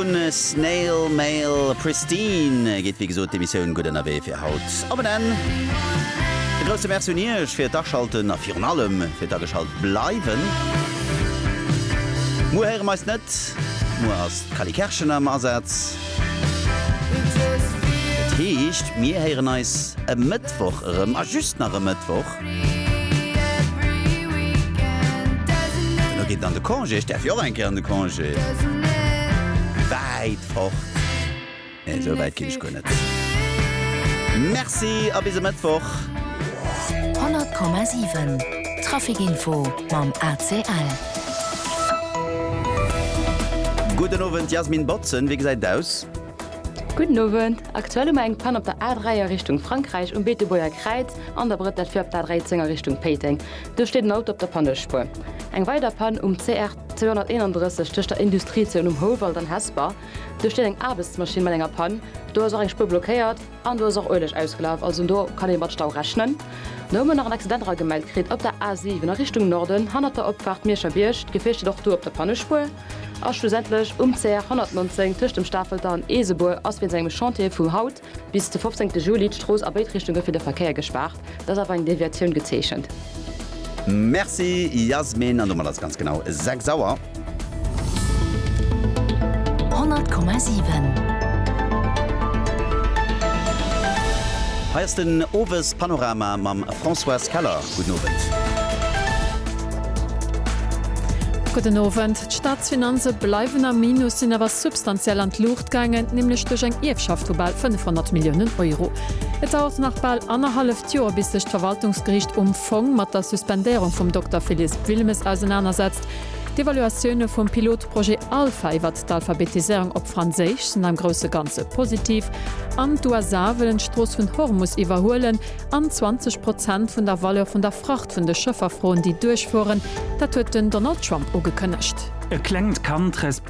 Snail Mail Pristine geet wéi gesot d'Emissioun gutt ënnerwee fir haut op en Enn. E grousse Merci un Iech fir d'Aschalten a virun allem fir d'Ageschalt bleiwen. Muer héiere mer eis net, muer ass d'Cally Kerschen am Asaz. Dat heescht, mir héieren eis e Mëttwoch erëm a just nach e Mëttwoch. Dono geet en an de Congé, ech däerf jo och eng Kéier an de Congé. Wäit fort, nee esou wäit ginn ech guer net. Merci a bis e Mëttwoch. 100,7 Traficinfo mam ACL. Gudden Owend Jasmin Botzen, wéi gesäit et aus? Gudden Owend, aktuell hu mer eng Pann op der A3 a Richtung Frankräich um Beetebuerger Kräiz an der Brëtt, dat fir op d'A13 a Richtung Péiteng. Do steet en Auto op der Pannespuer. Eng weider Pann um CR 231 tëscht der Industriezon Um Houwald an Hesper. Do steet eng Aarbechtsmaschinn mat enger Pann, do ass och eng Spuer blockéiert an do ass och Ueleg ausgelaf, also do kann ee mat Stau rechnen. Da hu mer nach en Accident eragemellt kritt op der A7 a Richtung Norden hannert der Opfaart Mierscher Bierg. D'Gefier steet och do op der Pannespuer. A schlussendlech um CR 119 tëscht dem Stafelter an Eesebuer ass wéinst engem Chantier vu haut bis de 15 Juli d'Strooss a béid Richtunge fir de Verkéier gespaart. Et ass awer eng Deviatioun gezeechent. Merci Yasmin, an domat ass et ganz genau 6 Auer. 100,7. Hei ass den Owespanorama mam Françoise Keller. Gudden Owend. Gudden Owend. D'Staatsfinanze bleiwen am Minus, sinn awer substantiell an d'Luucht gaangen, nämlech duerch eng Ierfschaft vu bal 500 Milliounen Euro. Et dauert nach bal annerhalleft Joer, bis sech d'Verwaltungsgeriicht um Fong mat der Suspendéierung vum Dokter Phillisp Wilmes ausenanersetzt. D'Evaluatioune vum Pilotprojet Alpha iwwert d'Alphabetiséierung op Franséisch sinn am grousse Ganze positiv. An d'USA wëllen d'Strooss vun Hormus iwwerhuelen. an 20 Prozent vun der Valeur vun der Fracht vun de Schëffer froen, déi duerchfueren. Dat huet den Donald Trump ugekënnegt. E klengt Kand resp.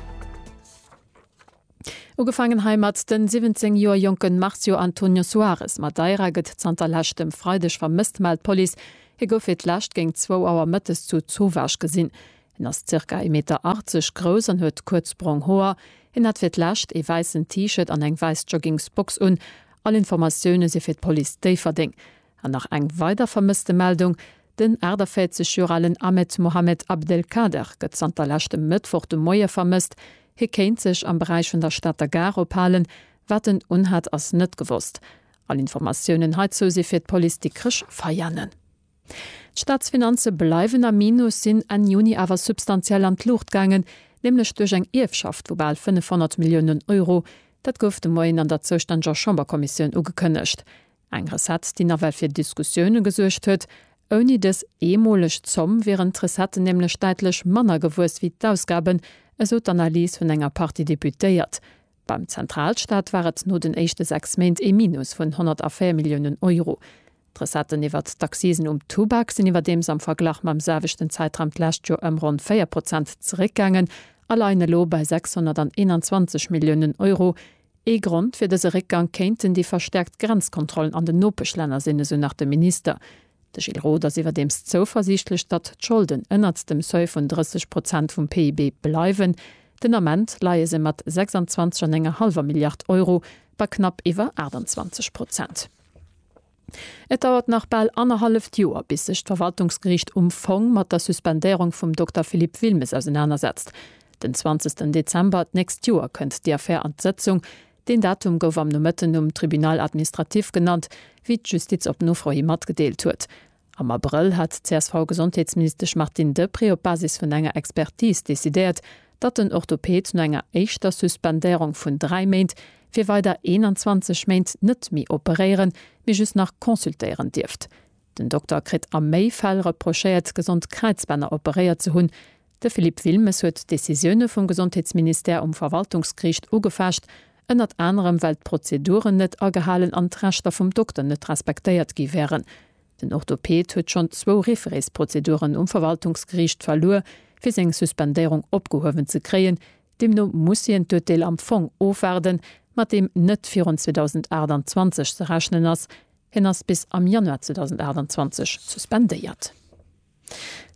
Ugefaangen heimat, De 17 Joer jonke Marcio Antonio Soares Madeira gëtt zanter leschtem Freideg vermësst, mellt d'Police. Hie gouf fir d'lescht géint zwou Auer mëttes zu Zovage gesinn. Hien ass zirka ee Meter 80 grouss an huet kuerz brong Hoer. Hien hat fir d'lescht ee wäissen T-Shirt an eng wäiss Joggingsbox un All Informatioune si fir d'Police Déifferdeng. An nach eng weider Vermësstemeldung, Den 48 Joer alen Ahmed Mohamed Abdelkader gëtt zanter leschtem Mëttwoch de Moie vermësst. Hie kéint sech am Beräich vun der Stater Gare ophalen. Wat en unhat, ass net gewosst. All Informatiounen heizou si fir d'Police Dikrech Veianen. D'Staatsfinanze bleiwen am Minus, sinn Enn Juni awer substantiell an d'Luucht gaangen, nämlech duerch eng Ierfschaft vu bal 500 Milliounen Euro. Dat gouf de Moien an der zoustänneger Chamberkommissioun ugekënnegt. Eng Recette, déi nawell fir Diskussioune gesuergt huet. Ouni dës eemoleg Zomm wieren d'Recetten nämlech däitlech manner gewuess wéi d'Ausgaben, esou d'Analys vun enger Partie Deputéiert. Beim Zentralstaat war et no den éischte sechs Méint ee Minus vun 104 Milliounen Euro. D'Recetten iwwert d'Accisen um Tubak sinn iwwerdeems am Verglach mam selwechten Zäitraum d'lescht Joer ëm ronn 4 Prozent zeréckgaangen a leien elo bei 621 Milliounen Euro. Ee Grond fir dëse Réckgank kéinten déi verstäerkt Grenzkontrollen an den Nopeschlänner sinn, esou nach de Minister. De Gilles Roth ass iwwerdeems zouversiichtlech, datt d'Scholden ënnert dem Seuil vun 30 Prozent vum PIB bleiwen. Den Ament leie se mat 26 an enger hallwer Milliard Euro bei knapp iwwer 28 Prozent. Et dauert nach bal annerhalleft Joer, bis sech d'Verwaltungsgeriicht um Fong mat der Suspendéierung vum Dokter Philippe Wilmes ausenanersetzt. Den 20 Dezember d'nächst Joer kënnt déi Affär an d'Sëtzung, Deen Datum gouf am Nomëtten um Tribunal administratif genannt, wéi d'Justiz op Nofro hi matgedeelt huet. Am Abrëll hat d'CSV-Gesondheetsministesch Martine Deprez op Basis vun enger Expertis decidéiert, datt den Orthoped no enger éischter Suspendéierung vun dräi Méint fir weider 21 Méint net méi operéieren, mee just nach consultéieren dierft. Den Dokter kritt a méi Fäll reprochéiert, gesond Kräizbänner operéiert ze hunn. De Philippe Wilmes huet d'Decisioune vum Gesondheetsministère um Verwaltungsgeriicht ugefecht, ënnert anerem well d'Prozeduren net agehalen an d'Rechter vum Dokter net respektéiert gi wären. Den Orthoped huet schonn zwou Référés-Prozeduren um Verwaltungsgeriicht verluer, fir seng Suspendéierung opgehuewen ze kréien. Deemno muss hien d'Urteel am Fong ofwaarden, mat deem net virun 2028 ze rechnen ass. Hien ass bis am Januar 2028 suspendéiert.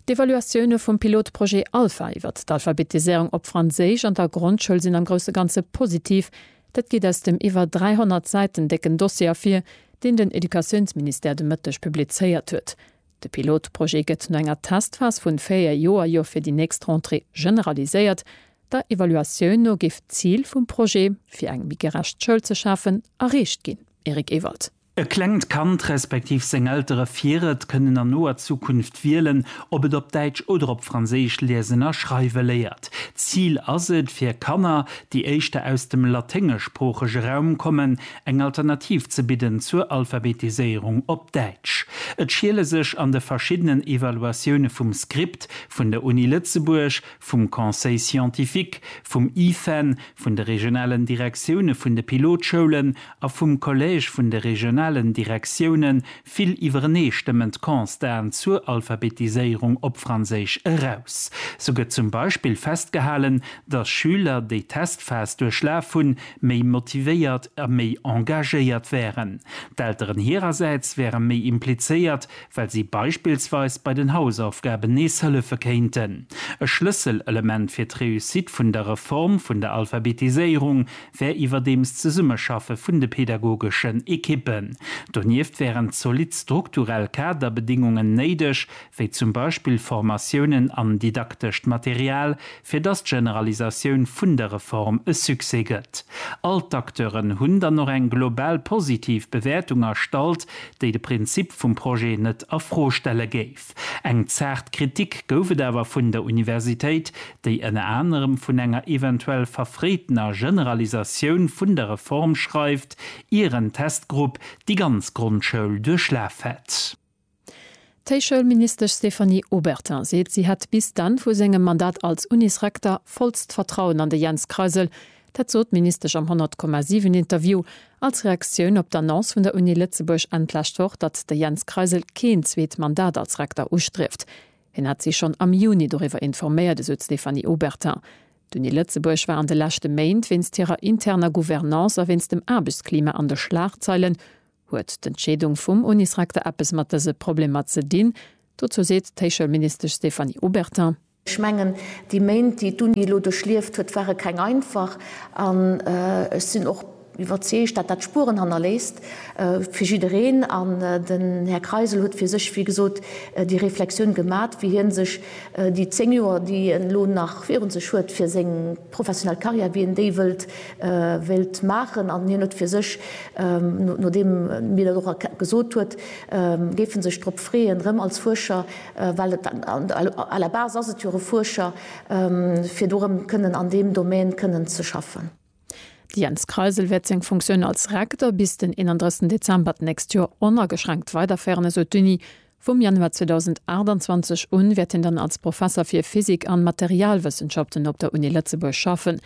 D'Evaluatioune vum Pilotprojet Alpha iwwert d'Alphabetiséierung op Franséisch an der Grondschoul sinn am grousse Ganze positiv. Dat geet aus dem iwwer 300 Säiten décken Dossier ervir, deen den Educatiounsministère de Mëtteg publizéiert huet. De Pilotprojet gëtt no enger Testphas vun 4 Joer jo fir déi nächst Rentrée generaliséiert. Der Evaluatioun no géif d'Zil vum Projet, fir eng méi gerecht Schoul ze schafen, erreecht ginn. Eric Ewald. E klengt Kand respektiv seng Eltere fir et kënnen an noer Zukunft wielen, ob et op Däitsch oder op Franséisch liesen a schreiwe léiert. D'Zil ass et, fir Kanner, déi éischter aus dem laténgeschsproochege Raum kommen, eng Alternativ ze bidden zur Alphabetiséierung op Däitsch. Et schiele sech an de verschiddenen Evaluatioune vum Script, vun der Uni Lëtzebuerg, vum Conseil scientifique, vum IFEN, vun de regionalen Direktioune vun de Pilotschoulen, a vum Collège vun de regionalen Direktioune vill iwwereneestëmmend Constaten zur Alphabetiséierung op Franséisch eraus. Sou gëtt zum Beispill festgehalen, datt Schüler, déi d'Testphas duerchlaf hunn, méi motivéiert a méi engagéiert wären. D'Elteren hirersäits wäre méi implizéiert, well si beispillsweis bei den Hausaufgaben nees hëllefe kéinten. E Schlësselelement fir d'Réussite vun der Reform vun der Alphabetiséierung wär iwwerdeems d'Zesummeschaffe vun de pädagogeschen Ekippen. Donieft wären zolidd strukturell Kaderbedingungen néideg, wéi zum Beispill Formatiounen an didaktescht Material, fir dass d'Generalisatioun vun der Reform e Succès gëtt. All d'Acteuren hunn dann och eng global positiv Bewäertung erstallt, déi de Prinzip vum Projet net a Fro stelle géif. Eng zaart Kritik gouf et awer vun der Universitéit, déi ënner anerem vun enger eventuell verfréitener Generalisatioun vun der Reform schreift, ier en Testgrupp déi ganz Grondschoul duerchlaf hätt. D'Héichschoulministesch Stéphanie Obertin seet, si hätt bis d'Enn vu sengem Mandat als Unis-Rekter vollst Vertrauen an de Jens Kreisel, Dat sot d'Ministesch am 100, 7 Interview als Reaktioun op d'Annonce vun der Uni Lëtzebuerg Enn d'lescht Woch, datt de Jens Kreisel keen zweet Mandat als Rekter ustrieft. Hien hat si schonn am Juni doriwwer informéiert, esou d'Stéphanie Obertin. D'Uni Lëtzebuerg war an de leschte Méint wéinst hirer interner Gouvernance a wéinst dem Aarbechtsklima an de Schlagzeilen. Huet d'Entscheedung vum Unisrekter eppes mat dëse Problemer ze dinn? Dozou seet d'Héichschoulministesch Stéphanie Obertin. Ech mengen, déi Méint, déi d'Uni elo duerchlieft huet, ware keng einfach, an ech sinn och iwwerzeegt, datt dat Spueren hannerléisst fir jiddereen. An den Här Kreisel huet fir sech, wéi gesot, déi Reflexioun gemat, wéi hie sech déi zéng Joer, déi en elo nach virun sech huet fir seng professionell Karriär, wéi en déi wéilt maachen. An hien huet fir sech, nodeem mir dat och gesot huet, géif e sech drop freeën, erëm als Fuerscher well et à la base ass et jo e Fuerscher, fir do erëm kënnen an deem Domaine kënnen ze schaffen. De Jens Kreisel wäert seng Funktioun als Rektor bis den 31 Dezember d'nächst Joer onageschränkt weiderféieren, esou d'Uni. Vum Januar 2028 un wäert hien dann als Professer fir Physik an Materialwëssenschaften op der Uni Lëtzebuerg schaffen.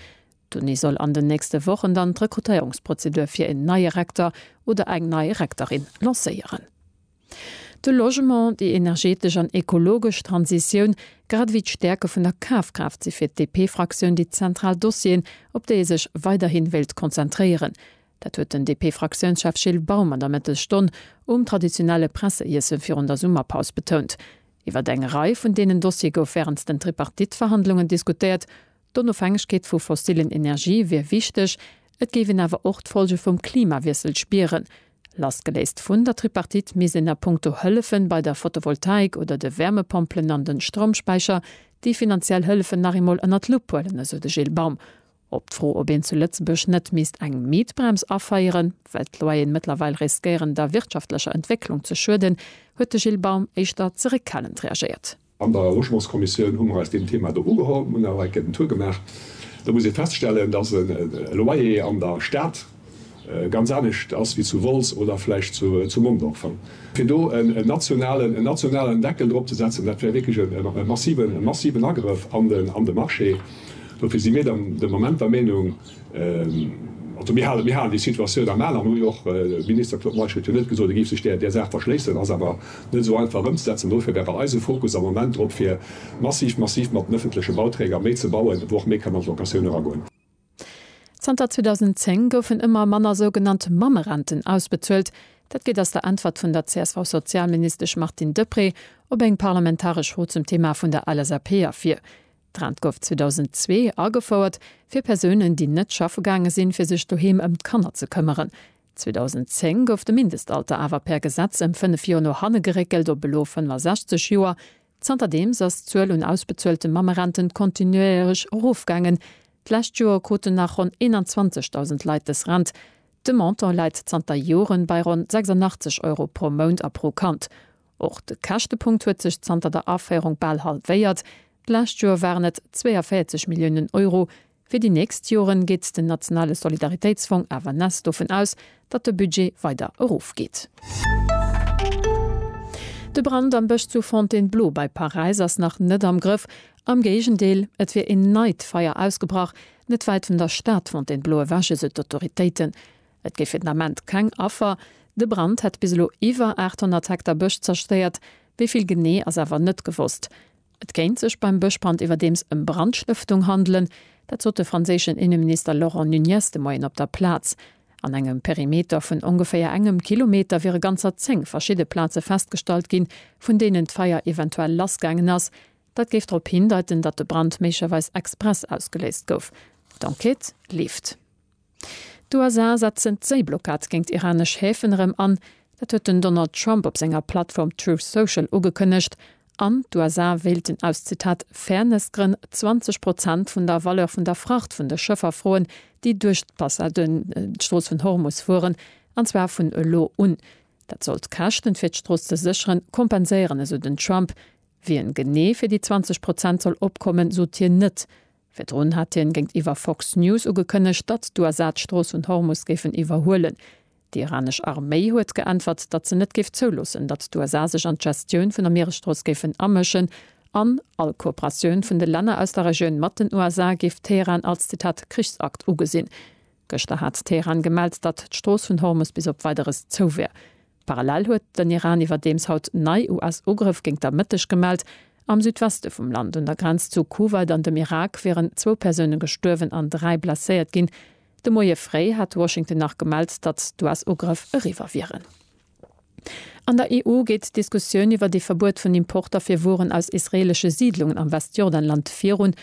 D'Uni soll an den nächste Wochen dann d'Rekrutéierungsprozedur fir een neie Rektor oder eng nei Rektorin lancéieren. De Logement, déi energetesch an ekologesch Transitioun, grad ewéi d'Stäerke vun der Kafkraaft si fir d'DP-Fraktioun déi zentral Dossieren, op déi ee sech weiderhi wéilt konzentréieren. Dat huet den DP-Fraktiounschef Gilles Baum an der Mëttesstonn um traditionelle Presseiesse virun der Summerpaus betount. Iwwer eng Rei vun deenen Dossiere gouf wärens den Tripartite-Verhandlungen diskutéiert, D'Onofhängegkeet vu fossillen Energie wier wichteg, et géif een awer och d'Folge vum Klimawiessel spieren. Lassgeléist vun der Tripartite misst een a punkto Hëllefe bei der Fotovoltaik oder de Wärmepompelen an de Stroumspäicher déi finanziell Hëllefen nach eemol ënner d'Lupp huelen, esou de Gilles Baum. Op d'Fro, ob een zu Lëtzebuerg net misst eng Mietbrems aféieren, well d'Loyeren mëttlerweil riskéieren der wirtschaftlecher Entwécklung ze schueden, huet de Gilles Baum éischter zeréckhalend reagéiert. An der Logementskommissioun hu mer eis deem Thema do ugeholl. Mir hunn awer enke den Tour gemaach. Do muss ee feststellen, dass e Loyer an der Stad ganz anescht ass wéi zu Wolz oder vläicht zu Mondorf. Fir do en nationalen Deckel drop ze setzen, dat wär wierklech e massiven Agrëff an de Marché. Dofir si mir de Moment der Meenung, Also mir halen, mir halen déi Situatioun am Al an hu jo och, de Minister Claude Meisch huet jo net gesot, e géif sech där, där Saach verschléissen, ass awer net esou einfach ëmzesetzen. Dofir wär bei eis e Fokus am Moment drop, fir massiv, massiv mat den öffentleche Bauträger méi ze bauen, wou och méi kann an d'Locatioun eragoen. Zanter 2010 goufen ëmmer manner sougenannt Mammerenten ausbezuelt. Dat geet aus der Äntwert vun der CSV-Sozialministesch Martine Deprez op eng parlamentaresch Fro zum Thema vun der LSAP ervir. D'Rent gouf 2002 agefouert fir Persounen, déi net schaffe gaange sinn, fir sech doheem ëm d'Kanner ze këmmeren. 2010 gouf de Mindestalter awer per Gesetz ëm fënnef Joer no hanne geréckelt op elo 65 Joer. Zanterdeems ass d'Zuel un ausbezuelte Mammerenten kontinuéierlech erofgaangen. D'lescht Joer kruten nach ronn 21.000 Leit dës Rent. De Montant läit zanter Joren bei ronn 86 Euro pro Mount a pro Kand. Och de Käschtepunkt huet sech zanter der Aféierung bal halwéiert, d'lescht Joer waren et 42 Milliounen Euro. Fir déi nächst Joren geet den nationale Solidaritéitsfong awer ness dovun aus, datt de Budget weider erofgeet. De Brand am Bësch zu Fontainebleau bei Paräis ass nach net am Grëff. Am Géigendeel, et wier een neit Feier ausgebrach, net wäit vun der Stad Fontainebleau ewech, esou d'Autoritéiten. Et géif fir den Ament keng Affer. De Brand hätt bis elo iwwer 800 Hektar Bësch zerstéiert, wéi vill genee ass awer net gewosst. Et kéint sech beim Bëschbrand iwwerdeems ëm Brandstëftung handelen. Dat sot de franséischen Inneminister Laurent Nunez de Moien op der Plaz. An engem Perimeter vun ongeféier engem Kilometer wiere ganzer 10 verschidde Plaze festgestallt ginn, vun deenen d'Feier eventuell lassgaangen ass. Dat géif drop hindeiten, datt de Brand méiglecherweis express ausgeléist gouf. D'Enquête leeft. D'USA setzen d'Séiblockad géint iranesch Häfen erëm an. Dat huet den Donald Trump op senger Plattform Truth Social ugekënnegt. An d'USA wéilten aus, Zitat, Fairness-Grënn 20 Prozent vun der Valeur vun der Fracht vun de Schëffer froen, déi duerch d'Strooss vun Hormus fueren, an zwar vun elo un. Dat soll d'Käschten, fir d'Strooss ze sécheren, kompenséieren, esou den Trump. Wien genee fir déi 20 Prozent soll opkommen, sot hien net. Virdrun hat hien géintiwwer Fox News ugekënnegt, datt d'USA d'Strooss vun Hormus géifen iwwerhuelen. Déi iranesch Arméi huet geäntwert, datt se net géif zouloossen, datt d'USA sech an d'Gestioun vun der Mieresstrooss géifen amëschen an all Kooperatioun vun de Länner aus der Regioun mat den USA géif Teheran als, Zitat, Krichsakt ugesinn. Gëschter hat Teheran gemellt, datt d'Strooss vun Hormus bis op Weideres zou wär. Parallel huet den Iran iwwerdeems haut nei US-Ugrëff géint der Mëtteg gemellt. Am Südweste vum Land, un der Grenz zu Kuwait an dem Irak, wieren zwou Persoune gestuerwen an dräi blesséiert ginn. De Moie fréi hat Washington nach gemellt, datt d'US-Ugrëff eriwwer wieren. An der EU geet d'Diskussioun iwwer ee Verbuet vun Importer fir Wueren aus israeelesche Siidlungen am Westjordanland virun.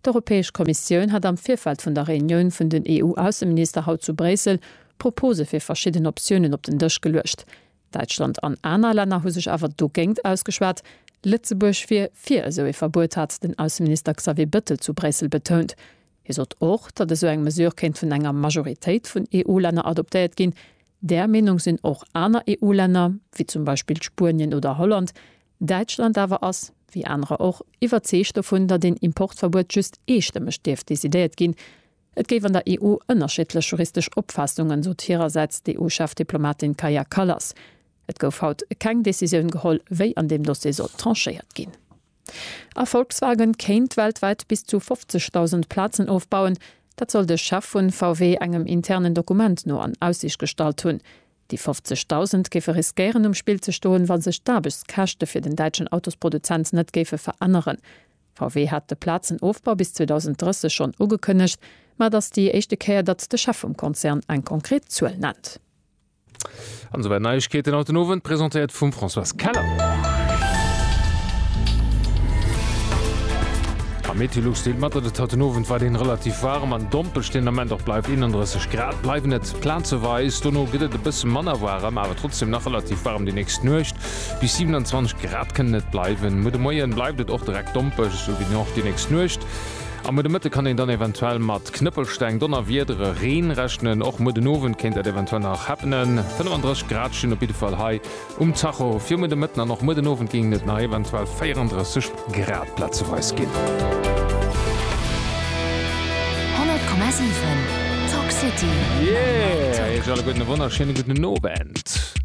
D'Europäesch Kommissioun hat am Virfeld vun der Reunioun vun den EU-Ausseminister haut zu Bréissel Propose fir verschidden Optiounen op den Dësch geluecht. Däitschland an aner Länner hu sech awer dogéint ausgeschwat. Lëtzebuerg wier fir esou ee Verbuet, hat den Ausseminister Xavier Bettel zu Bréissel betount. Hie sot och, datt esou eng Mesure kéint vun enger Majoritéit vun EU-Länner adoptéiert ginn. Där Meenung sinn och aner EU-Länner, wéi zum Beispill Spuenien oder Holland. Däitschland awer ass, wéi anerer och, iwwerzeegt dovun, datt een Importverbuet just eestëmmeg dierft decidéiert ginn. Et géif an der EU ënnerschiddlech juristesch Opfaassungen, sot hirersäits d'EU-Chefdiplomatin Kaja Kallas. Et gouf haut keng Decisioun geholl, wéi an deem Dossier soll tranchéiert ginn. A Volkswagen kéint weltwäit bis zu 50.000 Plazen ofbauen. Dat soll de Chef vu VW engem internen Dokument no an Aussiicht gestallt hunn. Déi 50.000 géife riskéieren um Spill ze stoen, wa sech d'Aarbechtskäschte fir den däitschen Autosproduzent net géife veränneren. VW hat de Plazenofbau bis 2030 schonn ugekënnegt, ma et ass déi éischte Kéier, datt de Chef vum Konzern eng konkret Zuel nennt. An souwäit Neiegkeeten haut den Owend, presentéiert vum Françoise Keller. Am Meteolux deelt mat, datt et haut den Owend weiderhin relativ waarem an dompelsch den Ament och bleift, 31 Grad bleiwen et plazeweis, dono gëtt et e bësse manner waarem, awer trotzdeem nach relativ waarem. Déi nächst Nuecht bis 27 Grad kënnen et bleiwen. Muer de Moien bleift et och direkt dompelsch, esou wéi och déi nächst Nuecht. Am muer de Mëtte kann een dann eventuell mat Knëppelsteng, Donnerwiedere, Reen rechnen. Och muer den Owend kéint dat eventuell nach happenen. 35 Grad stinn op jidde Fall hei um Tacho. Fir muer de Mëtten an och muer den Owend géingen et nach eventuell 34 Grad plazeweis ginn. 100,7 Talk City. Yeah! Iech alleguerten e wonnerschéine gudden Owend.